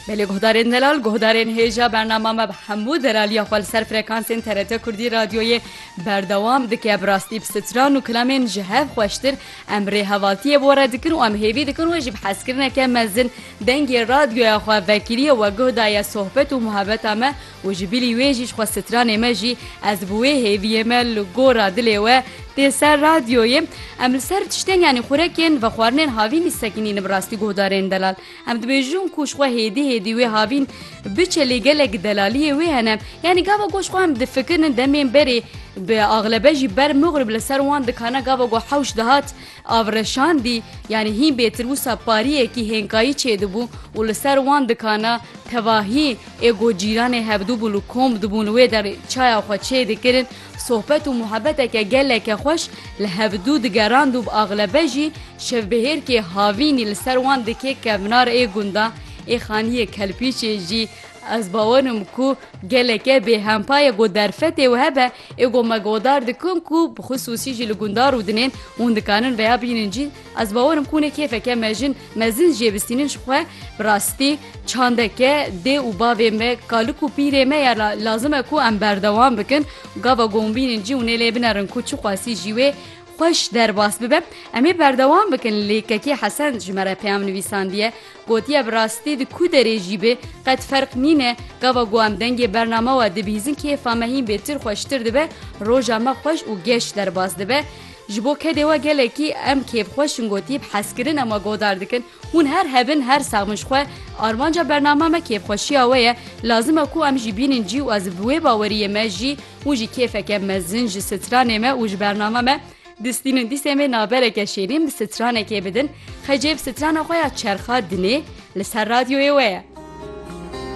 Belê guhdarên delal guhdarên hêja bernama me bi hemû delaliya xwe li ser frekansên TRT Kurdî radyoyê berdewam dike bi rastî bi stran û kilamên ji hev xweştir em rêhevaltiyê bo re dikin û em hêvî dikin wê jî bi hezkirineke mezin dengê radyoya xwe vekirîye we guh daye sohbet û muhebeta me Û ji bilî wê jî ji xwe stranê me jî ez bi wê hêviyê me li gora dilê we tê ser radyoyê. Em li ser tiştên yanî xurekên vexwarinên havînî sekinîn bi rastî guhdarên delal. Em dibêjin ku ji xwe hêdî hêdî wê havîn biçe lê gelek delaliyê wê hene. Yanî gava ku ji xwe em difikirin demên berê bi axlebe jî ber mugrib li ser wan dikana gava ku hewş dihat Avreşandî yanî hîn bêtir wisa pariyekî hênkayî çêdibû û li ser wan dikana tevahî ê ku cîranê hevdûbûn û komb dibûn li wê derê çaya xwe çêdikirin sohbet û muhebeteke geleke xweş li hevdû digerand û bi axlebe jî şevbihêrkê havînî li ser wan dikê kevnar ê gunda ê xaniyê kelpîçê jî ez bawerim ku geleke bêhempa ye ku derfetê we hebe Ê ku me guhdar dikin ku bi xisûsî jî li gundar û dinên hûn dikarin vêya bînin jî ez bawer im ku hûn ê kêfeke mejin mezin jê bistînin ji xwe bi rastî çandeke dê û bavê me kalik û pîrê me ya lazim e ku em berdewam bikin gava ku hûn bînin jî hûn ê lê binerin ku çiqasî jî wê xweş derbas bibe em ê berdewam bikin lê kekê hesen ji me re peyam nivîsandiye Gotiye bi rastî di ku derê jî bê qet ferq nîne, gava ku em dengê bername we dibihîzin kêfa me hîn bêtir xweştir dibe, roja me xweş û geş derbas dibe. Ji bo kedê we gelekî em kêfxweş in gotî bi hezkirinê me godar dikin. Hûn her hebin her sax bin ji xwe. Armanca bername me kêfxweşiya we ye. Lazim e ku em jî bînin cî û ez bi wê baweriyê me jî û ji kêfeke mezin ji stranê me û ji bername me Distîn û dîsên vê nabereke şêrîn bi stranekê bidin, xecê bi strana xwe ya çerxa dinê li ser radyoyê we ye.